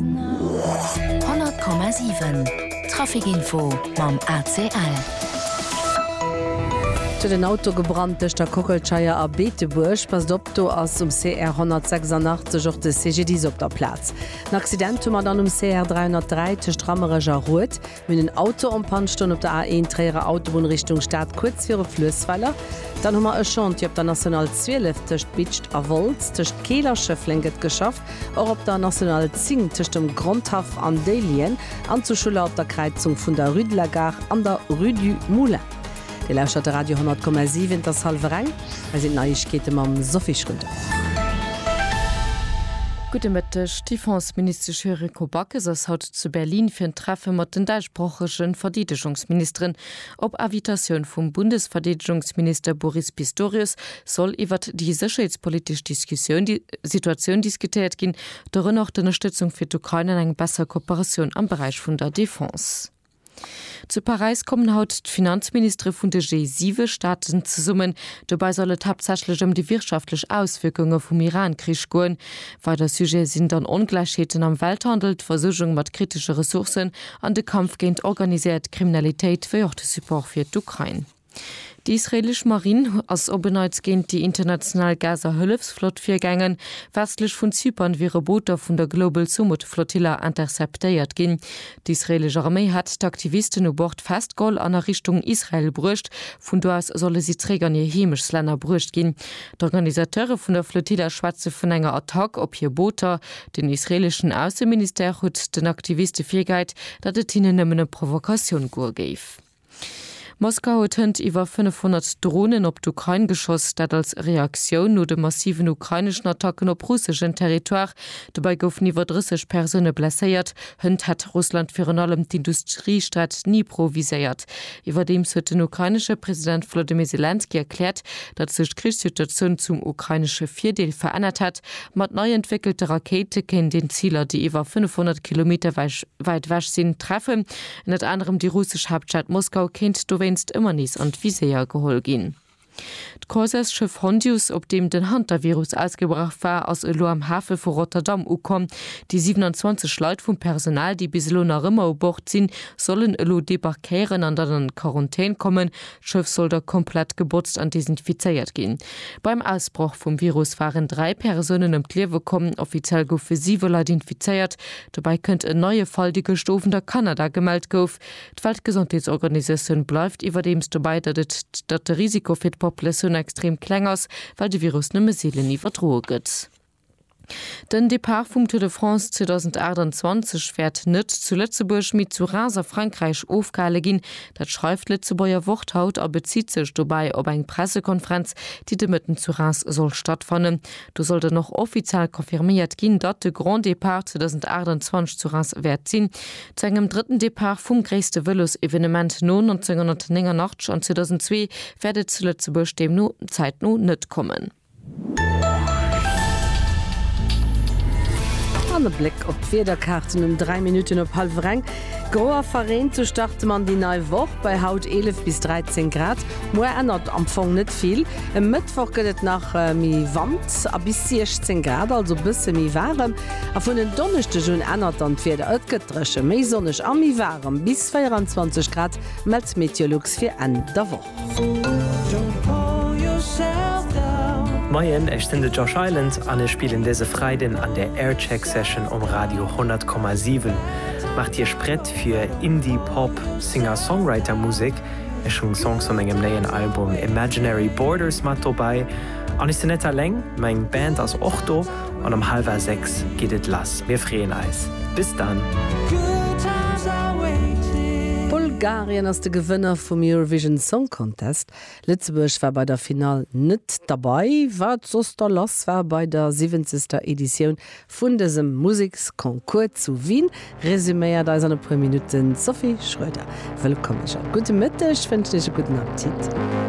100,7 Traficinfo mam ACL. Et huet en Auto gebrannt tëscht der Kockelscheier a Beetebuerg. Passt op, do ass um CR 186 och de CGDIS op der Plaz. En Accident hu mer dann um CR 303 tëscht Rammerech a Rued. Mir hunn en Auto en panne stoen op der A1 Tréierer Autobunn Richtung Stad kuerz viru Fluessweiler. Dann hu mer e Chantier op der National 12 tëscht Bitscht a Wolz. Tëscht Keel a Schëffleng gëtt geschafft, och op der National 10 tëscht dem Grondhaff an Déihlien an zu Schuller op der Kräizung vun der Rue de la Gare an der Rue du Moulin. Dir lauschtert de Radio 100,7, et ass hallwer eng. Hei sinn d'Neiegkeete mam Sophie Schröder. Gudde Mëtteg, D'Defenseministesch Yuriko Backes ass haut zu Berlin fir en Treffe mat den däitschsprochege Verdeedegungsministeren op Invitatioun vum Bundesverdeedegungsminister Boris Pistorius soll iwwert déi sécherheetspolitesch Diskussioun Situatioun diskutéiert ginn, dorënner och d'Ënnerstëtzung fir d'Ukrain an eng besser Kooperatioun am Beräich vun der Defense. Zu Paräis kommen haut d'Finanzministere vun de G7-Staaten zesummen. Dobäi soll et haaptsächlech ëm déi wirtschaftlech Auswierkunge vum Iran-Krich goen. Weider Sujete sinn dann Ongläichheeten am Welthandel, d'Versuergung mat kritesche Ressourcen an de Kampf géint organiséiert Kriminalitéit, wéi och de Support fir d'Ukrain. Déi israeelesch Marinn ass op en Neits géint déi international Gaza-Hëllefsflott virgaangen. Westlech vun Zypern wiere Booter vun der Global Sumud Flotilla interceptéiert ginn. D'israeelesch Arméi hätt d'Aktivisten u Bord festgeholl an a Richtung Israel bruecht. Vun do aus solle si zeréck an hir Heemechtlänner bruecht ginn. D'Organisateure vun der Flotilla schwätze vun enger Attack op hir Booter. Den israeeleschen Ausseministère huet den Aktiviste virgehäit, datt et hinnen nëmmen ëm Provokatioun goe géif. Moskau huet hënt iwwer 500 Dronen op d'Ukrain geschoss, dat als Reaktioun no de massiven ukraineschen Attacken op russeschen Territoire. Dobäi goufen iwwer 30 Persoune blesséiert. Hënt hätt Russland virun allem d'Industriestad Dnipro viséiert. Iwwerdeems huet den ukrainesche President Volodymyr Selenskyj erkläert, datt sech d'Krichssituatioun zum ukrainesche Virdeel verännert hätt. Mat nei entwéckelte Rakéite kéint een Ziler, déi iwwer 500 Kilometer wäit ewech sinn, treffen. Ënnert anerem déi russesch Haaptstad Moskau kéint dowéinst ëmmer nees an d'Viséier geholl ginn. D'Croiseursschëff Hondius, op deem den Hantavirus ausgebrach war, ass elo am Hafe vu Rotterdam ukomm. Déi 27 Leit vum Personal, déi bis elo nach ëmmer u Bord sinn, sollen elo debarquéieren an dann an d'Quarantän kommen, D'Schëff soll da komplett gebotzt an desinfizéiert ginn. Beim Ausbroch vum Virus waren dräi Persounen ëm d'Liewe komm. Offiziell goufe siwe Leit infizéiert. Dobäi kënnt en neie Fall, dee gëscht Owend a Kanada gemellt gouf. D'Weltgesondheetsorganisatioun bleift iwwerdeems dobäi, datt et datt de Risiko fir d'Populatioun extrem kleng ass, well de Virus nëmme seelen iwwerdroe gëtt. Den Depart vum Tour de France 2028 wäert net zu Lëtzebuerg, mee zu Reims a Frankräich ofgehale ginn. Dat schreift d'Lëtzebuerger Wort haut a bezitt sech dobäi op eng Pressekonferenz, déi de Mëtten zu Reims soll stattfannen. Do soll dann och offiziell confirméiert ginn, datt de Grand Depart 2028 zu Reims wäert sinn. Zu engem drëtten Depart vum gréisste Vëlosevenement no 1989 an 2002 wäert et zu Lëtzebuerg deemno zäitno net kommen. An e Bléck op d'Wiederkaarten um 3 Minutten op hallwer eng. Gro a verreent, sou starte mer an déi nei Woch bei haut 11 bis 13 Grad. Muer ännert am Fong net vill, e Mëttwoch gëtt et nach méi Wand a bis 16 Grad, also bësse méi waarem. A vun en Donneschdeg un ännert dann d'Wieder, et gëtt dréche, méi sonneg a méi waarem, bis 24 Grad mellt Meteolux fir Enn der Woch. Moien, ech sinn de Josh Island an ech spillen dëse Freiden an der Aircheck Session um Radio 100,7. Maacht Iech prett fir Indie Pop Singer-Songwriter Musek. Ech hunn Songs vu mengem néien Album Imaginary Borders mat dobäi. An ech sinn net alleng, meng Band ass och do. An um halwer 6 geet et lass. Mir freeën eis. Bis dann! Bulgarien ass de Gewënner vum Eurovision Song Contest. Lëtzebuerg war bei der Finall net derbei, wat soss da lass war bei der siwwenzegster Editioun vun dësem Museksconcours zu Wien, resuméiert eis an e puer Minutten d'Sophie Schroeder. Wëllkomm, Jeanne. Gudde Mëtteg, wënschen Iech e gudden Appetit.